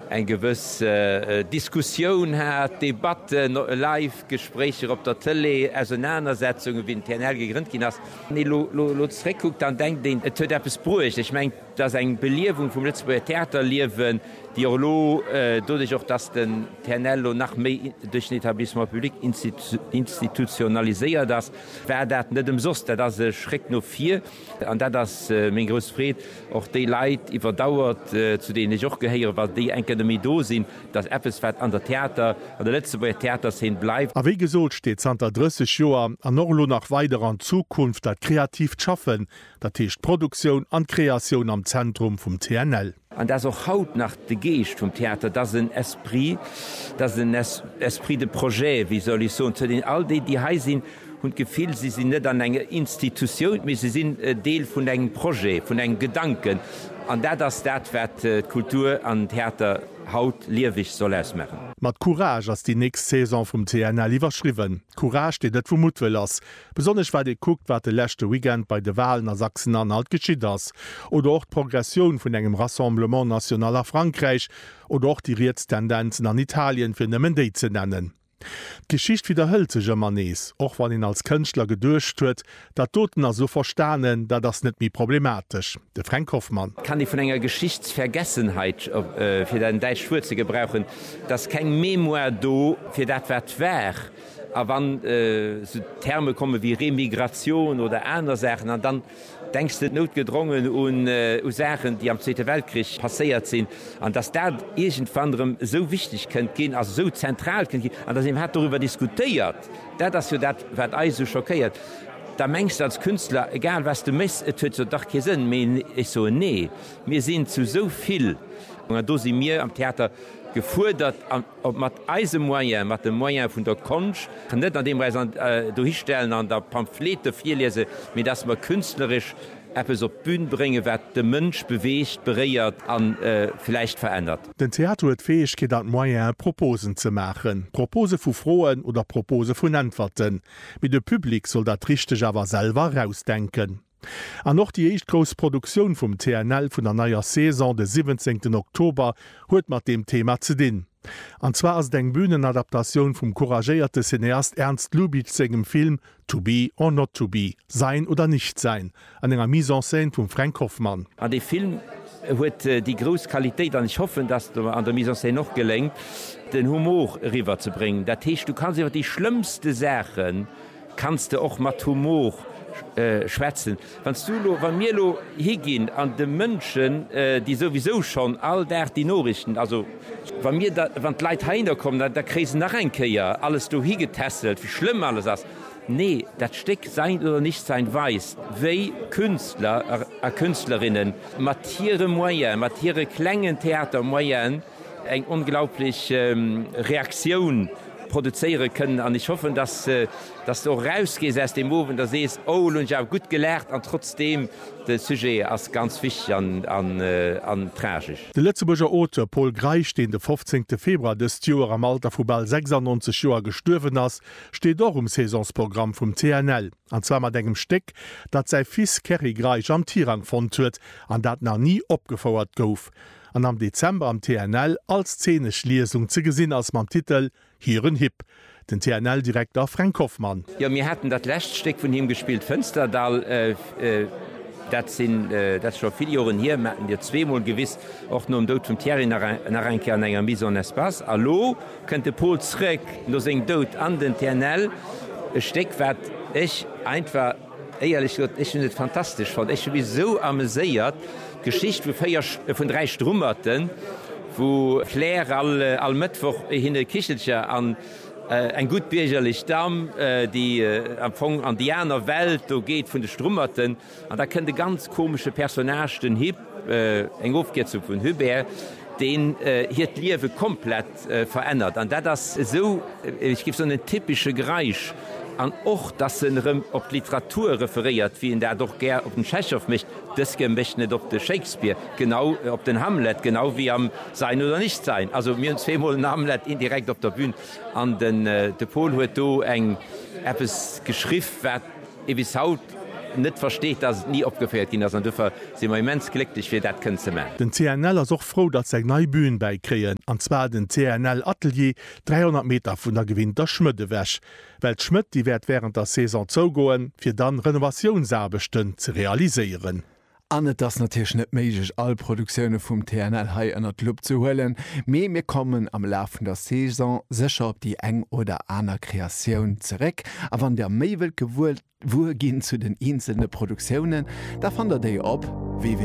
eng gewëss Diskussioun hat, Debatten, live Gespréicher op der Tëlee, Ausenanersetzungen, wéi den TNL gegrënnt ginn ass. Wann ee lo zeréckkuckt, dann denkt een, et huet eppes bruecht. Ech mengen, et ass eng Beliewung vum Lëtzebuerger Theaterliewen, déi och elo doduerch, och datt den TNL elo nach méi duerch den Etablissement public institutionaliséiert ass, war dat net ëmsoss. Dat ass e Schréck no vir. An dat ass meng grouss Freed, och déi Leit iwwer Dauer, zu deenen ech och gehéieren, wa déi eng Kéier net méi do sinn, dass eppes, wat an der Theater, an der Lëtzebuerger Theaterszen bleift. A wéi gesot, steet zanter 30 Joer an och elo nach weider an Zukunft dat kreatiivt Schaffen, dat heescht d'Produktioun an d'Kreatioun am Zentrum vum TNL. An dat ass och haut nach de Geescht vum Theater, dat ass en Esprit, dat ass en Esprit de projet, wéi soll ech soen, zu deenen all déi, déi hei sinn, hunn d'Gefill, si sinn net an enger Institutioun, mee si sinn Deel vun engem Projet, vun engem Gedanken. An dat ass dat, wat d'Kultur an den Theater haut lieweg soll ausmaachen. Mat Courage ass déi nächst Saison vum TNL iwwerschriwwen. Courage, deen net vu Muttwëll ass. Besonnesch wat ee kuckt, wat de leschte Weekend bei de Walen a Sachsen-Anhalt geschitt ass, oder och d'Progressioun vun engem Rassemblement national a Frankräich, oder och déi riets Tendenzen an Italien, fir nëmmen déi ze nennen. D'Geschicht widderhëlt sech ëmmer nees, och wann een als Kënschtler geduecht huet, dat doten ass elo verstanen, dat ass net méi problematesch. De Fränk Hoffmann. Kann déi vun enger Geschichtsvergessenheit, fir dat däitscht Wuert ze gebrauchen, et ass keng Mémoire do fir dat wat war. A wann esou Terme komme wéi Remigratioun oder aner Saachen an dann denks de noutgedrongen u Saachen, déi am Zweete Weltkrich passéiert sinn an dass dat iergendwann erëm esou wichteg kënnt ginn, also esou zentral kënnt ginn an dass een hat doriwwer diskutéiert, dat ass jo dat wat eis esou schockéiert. Da mengs de als Künstler, egal wat s de méchs, et huet jo dach kee Sënn méi. Ech soen, nee, mir sinn zu esou vill an do si mir am Theater gefuerdert. Ob mat eise Moyen, mat de Moyen vun der Konscht, net an deem mer äis dohi stellen an da Pamphlete virliese, mee datt mer künstleresch eppes op d'Bün bréngen, wat de Mënsch beweegt, beréiert a vläicht verännert. Den Theater huet d'Fäegkeet an d'Moyene Proposen ze maachen, Propose vu Froen oder Propose vun Äntwerten, mee de Public soll dat Richteg awer selwer erausdenken. An och déi éischt grouss Produktioun vum TNL vun der neier Saison, de siwwenzéngten Oktober, huet mat deem Thema ze dinn. An zwar ass et eng Bühnenadaptatioun vum couragéierte Cineast Ernst Lubitsch sengem Film To be or not to be, Sein oder nicht sein, an enger Mise en scène vum Fränk Hoffmann. An dee Film huet déi grouss Qualitéit, an ech hoffen, dass et mer an der Mise en scène och geléngt, den Humor eriwwer ze bréngen. Dat heescht, du kanns iwwer déi schlëmmste Saachen Kanns de och mat Humor schwätzen? Wann s du elo, wann mir elo higinn an de Mënschen, déi souwisou schonn all Dag déi Norichten, also wa mir da, wann d'Leit heihinner kommen, da, da kréie se nach eng Kéier alles dohi getässelt, wéi schlëmm alles ass. Nee, dat Stéck Sein oder Nichtsein weist, wéi Künstler a Künstlerinnen mat hire Moyen, mat hire klengen Theatermoyenen, eng onglaublich Reaktioun produzéiere kënnen an ech hoffen, dass s de och erausgees aus deem Owend a sees, oh elo hunn ech awer gutt gelaacht an trotzdeem, de Sujet ass ganz wichteg an tragesch. De Lëtzebuerger Auteur Pol Greisch, deen de 15 Februar dëst Joer am Alter vu bal 96 Joer gestuerwen ass, steet och um Saisonsprogramm vum TNL. An zwar mat engem Stéck, dat säi Fils Kerry Greisch am Tirang fonnt huet an dat nach ni opgefouert gouf. an am Dezember am TNL als zeenesch Liesung ze gesinn ass mam Titel Hiren Hipp, den TNL-Direkter Fränk Hoffmann. Jo, mir haten dat lescht Stéck vun him gespillt, Fënsterdall, dat sinn, dat ass scho vill Joren hier, mer haten dir zweemol gewis, och nom Doud vum Thierry nach eng, nach eng Kéier an enger Mise en espace. A lo kënnt de Pol zrëck no sengem Doud an den TNL, e Stéck wat ech einfach. Éierlech gesot, ech hunn et fantastesch fonnt. Ech hu mech esou ameséiert. D'Geschicht vu véier, vun dräi Strummerten, wou d'Claire all, all Mëttwoch hinne e Kichelcher an eng gutt biergerlech Damm, déi am Fong an déi aner Welt do geet vun de Strummerten. An da kënnt e ganz komesche Personnage, den Hip. Eng Ofkierzung vun Hubert, deen hiert Liewe komplett verännert. An dat ass esou, ech géif soen, en typesche Greisch. An och, dass en erëm op d'Literatur referéiert, wéi en dat och gär op den Tschechow mécht, dës Kear mécht en et op de Shakespeare, genau op den Hamlet, genau wéi am Sein oder nicht sein. Also mir hunn zweemol den Hamlet indirekt op der Bühn. An de Paul huet do eng eppes geschriff, wat. ee bis haut net versteet, dass et ni opgeféiert ginn ass an duerfir si mer immens glécklech fir dat kënnen ze man. Den CNL ass och frou, datt se eng nei Bühn bäi kréien, an zwar den CNL Atelier, 300 Meter vun der gewinnter Schmëdd ewech. Well d'Schmëdd, déi wäert wärend der Saison zougoen, fir dann Renovatiounsaarbechten ze realiséieren. An et ass natierlech net méiglech, all Produktioune vum TNL hei ënnert d'Lupp ze huelen, mee mir kommen am Laf vun der Saison sécher op déi eng oder aner Kreatioun zeréck. A wann Der méi wëllt gewuer ginn zu den eenzelne Produktiounen, da fannt Der déi op www.